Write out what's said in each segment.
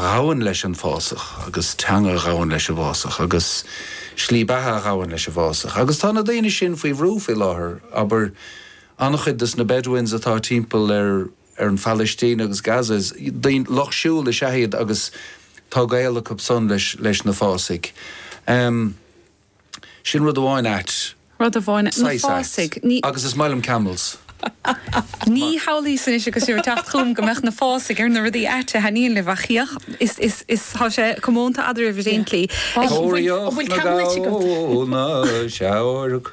ghabhann leis an bhfásach, agus teanga a ghabhann leis an bhfásach, agus slí beatha a ghabhann leis an bhfásach. Agus tá na daoine sin faoi bhrú faoi láthair, abair, an-chuid des na Bedouins atá timpeall ar an Phalaistín agus Gaza, daoine, lucht siúil is ea iad agus tá gaol acu san leis na fásaigh. Sin rud amháin ait. Rud amháin, na Saghas ait. fásaigh. Ní. Agus is maith liom camels. Ní shamhlaíos anois agus tú ag teacht chugam go mbeadh na fásaigh ar na rudaí aite a thaitníonn libh, ach féach, is, is, is, tá sé comónta eadraibh, evidently. Tóraíocht na gabhal, na seabhairc.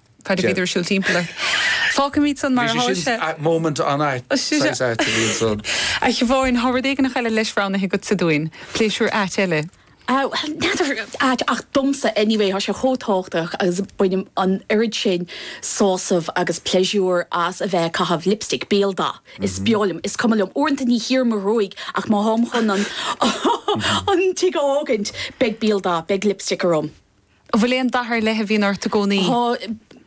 Cad a bhíodar ag siúl timpeall ort? Fágfaimid san mar atá sé. Moment an-ait. Saghas ait a bhíonn san. A Shiobháin, tá rud éigin eile leis roghnaithe agatsa dúinn. Pléisiúr ait eile. N'fheadar. Ait. Ach domsa, anyway, tá sé chomh tábhachtach agus bainim an oiread sin sásaimh agus pléisiúir as a bheith ag caitheamh lipstick. Béaldath. Is breá liom. Is cuma liom. Uaireanta ní chíoraim mo ghruaig ach má táim chun an tigh a fhágaint, beidh béaldath, beidh lipstick orm. An bhfuil aon dath ar leith a bhíonn ort i gcónaí?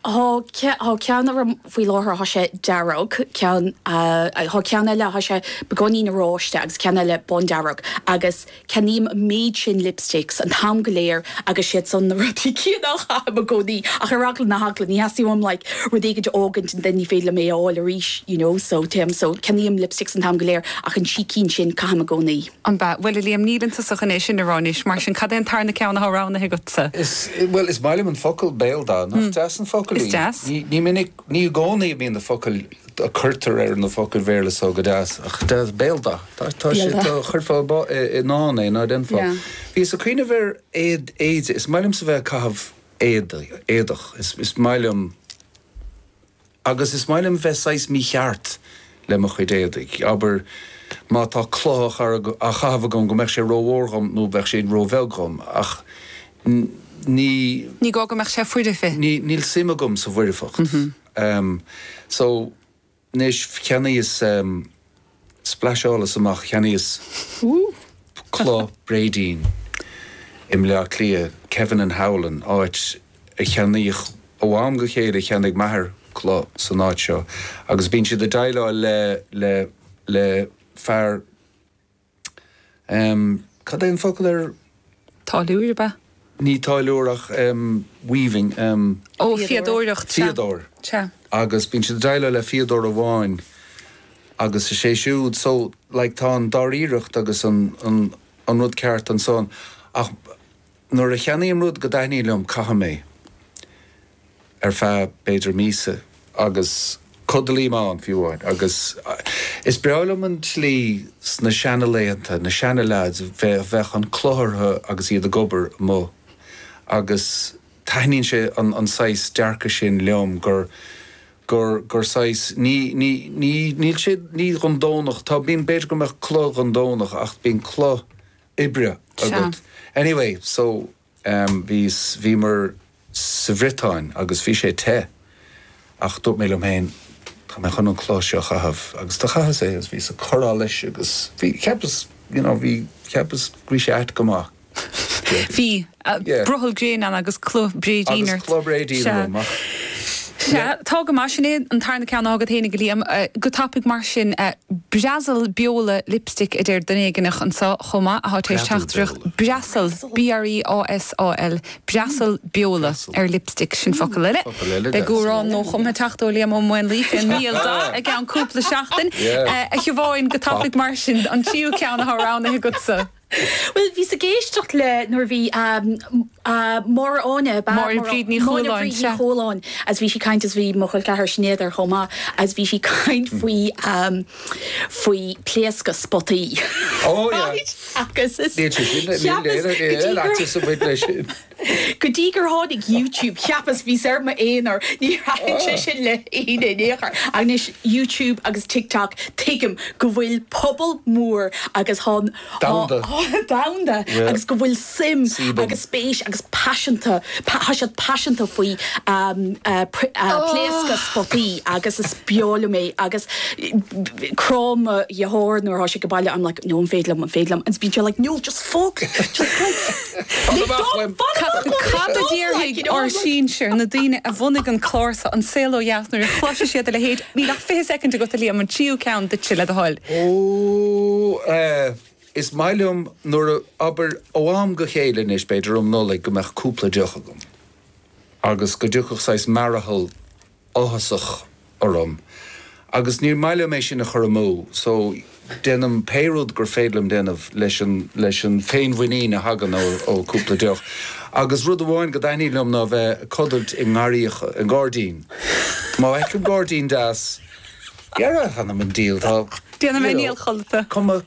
Tá, tá ceann orm faoi láthair, tá sé dearg, ceann, tá ceann eile, tá sé beagáinín oráiste agus ceann eile bándearg agus ceannaím an méid sin lipsticks an t-am go léir agus siad san na rudaí céanna a chaithim i gcónaí ach ar eagla na heagla, ní theastaíonn uaim like rud éigin a fhágaint and then ní féidir liom é a fháil arís you know so téim, so ceannaím lipsticks an t-am go léir ach an trí cinn sin caithim i gcónaí. Ab ea? Bhuel, a Liam, níleann tusa chun é sin a rá anois, mar sin cad é an tarna ceann atá roghnaithe agatsa? Is, bhuel, is maith liom an focal béaldath. Nach deas an focal í? Is deas. Ní minic, ní i gcónaí a bhíonn na focail a cuirtear ar na focail Bhéarla so go deas, ach deas, béaldath. Tá sé, tá, chuirfeá i ndán é, ná déanfá? Bhíos ag cuimhneamh ar éad, éide, is maith liomsa bheith ag caitheamh éadaí, éadach, is maith liom. Agus is maith liom bheith saghas mícheart le mo chuid éadaigh. Abair, má tá culaith á chaitheamh agam, go mbeadh sé rómhór dhom nó bheadh sé róbheag dhom, ach ní. Ní gá go mbeadh sé foirfe. Níl suim agam sa bhfoirfeacht. So, anois, cheannaíos. Splasheálas amach cheannaíos culaith bréidín i mBleá Cliath, Kevin and Howlin, áit a cheannaíodh ó am go chéile, cheannaigh m'athair culaith san áit seo agus bíonn siad ag déileáil le fear em cad é an focal ar. táilliúir ab ea? ní táilliúir ach em weaving em. ó fíodóireacht sea. fíodóir sea. agus bíonn siad ag déileáil le fíodóir amháin agus is é siúd so like tá an dáiríreacht agus an an an rud ceart ansan ach. Nuair a cheannaím rud go dtaitníonn liom, caithim é ar feadh, b'fhéidir, míosa. Agus codlaím ann, fiú amháin. Agus is breá liom an tslí sna seana-laethanta, na seana-leaids a bheadh an chulaith orthu agus iad ag obair amuigh. Agus taitníonn sé an saghas dearcaidh sin liom, gur, gur, gur saghas, ní, ní, ní, níl sé, ní don Domhnach, tá, bíonn, b'fhéidir go mbeadh culaith dhon Domhnach, ach bíonn culaith oibre agat. Anyway, so, em, bhí, bhíomar sa Bhriotáin agus bhí sé te ach dúirt mé liom féin, tá mé chun an chulaith seo a chaitheamh agus do chaitheas é agus bhíos ag cur allais agus bhí, cheapas, you know, bhí, cheapas go raibh sé ait go maith. Bhí. Sea. Brothall gréine ann agus culaith bréidín ort. Agus culaith bréidín orm, ach. Sea. Tá go maith. Sin é an tarna ceann athá agat fhéinig, a Liam. Go tapaidh mar sin, Breasal beola lipstick, a deir duine éigineach anseo chomh maith atá tar éis teacht isteach. Breasal. B-r-e-a-s-a-l. Breasal beola ar lipstick. Sin focal eile. Focal eile. Beidh amhrán nua-chumtha ag teacht ó Liam Ó Maonlaí fén mbéaldath i gceann cúpla seachtain. A Shiobháin, go tapaidh mar sin, an tríú ceann athá roghnaithe agatsa. Bhuel, bhíos ag éisteacht le, nuair a bhí Máire Áine, ba, Máire Bríd Ní Chualáin, Máire Bríd Ní Chualáin agus bhí sí ag caint agus bhí mo chol ceathar Sinéad ar chomh maith agus bhí sí ag caint faoi, faoi pléascadh spotaí. Ó, yeah. Agus is, cheapas, go dtí gur. Go dtí gur tháinig YouTube, cheapas, bhíos ar m'aonar, ní thaitin sé sin le héinne in aon chor. Ach anois, YouTube agus TikTok, tuigim go bhfuil pobal mór agus Domhanda. domhanda Yeah. agus go bhfuil suim Sílim. agus spéis agus paiseanta, tá siad paiseanta faoi pléascadh spotaí agus is breá liom é agus cráim mo dheartháir nuair atá sé ag baile, I'm like, no, an féidir liom, an féidir liom, agus bíonn sé like, no, just focus, just go. Cad a bheadh le. Cad a déarfaidh ár sinsir, na daoine a bhunaigh an clár seo, An Saol ó Dheas nuair a chloisfidh siad a leithéid? Níl ach fiche soicind agat, a Liam, an tríú ceann duitse le do thoil. Ó, eh, is maith liom nuair a, abair, ó am go chéile anois, b'fhéidir um Nollaig, go mbeadh cúpla deoch agam. Agus go dtiocfadh saghas mearathal áthasach orm agus níor mhaith liom é sin a chur amú so déanaim pé rud gur féidir liom déanamh leis an leis an féinmhuinín a thagann ó cúpla deoch. Agus rud amháin go dtaitníonn liom ná bheith ag codailt i ngarraíocha, i ngairdín. Má fheicim gairdín deas, dhera, th'anam 'on diabhal, tá, you know, cuma.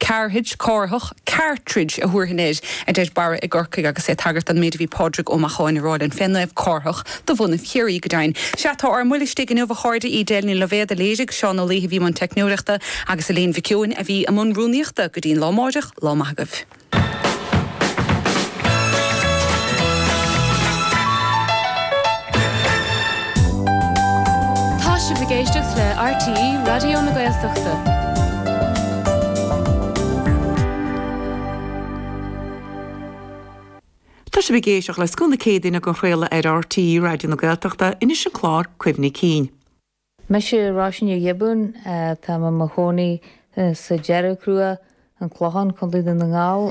Carthage, Cárthach, Cartridge a thabharfainn air, a deir Barra i gCorcaigh agus é ag tagairt don méid a bhí Pádraig Ó Macháin ag rá linn fé Naomh Cárthach de bhunadh Chiarraí, go deimhin. Sea, tá ár mbuille istigh inniu, a chairde, Edel Ní Loibhéad a léirigh, Seán Ó Laoithe a bhí i mbun teicneolaíochta, agus Elaine Mhic Eoin a bhí i mbun rúnaíochta. Go dtí an lá amáireach, lá maith agaibh. Tá sibh ag éisteacht le RTÉ Raidió na Gaeltachta. Tá sibh ag éisteacht le Scoth na Céadaoine á chraoladh ar RTÉ Raidió na Gaeltachta, anois an clár Cuimhní Cinn. Mise Róisín Ní Ghiobúin. Táim i mo chónaí sa Dearg Chruach, An Clochán, Contae Dhún na nGall.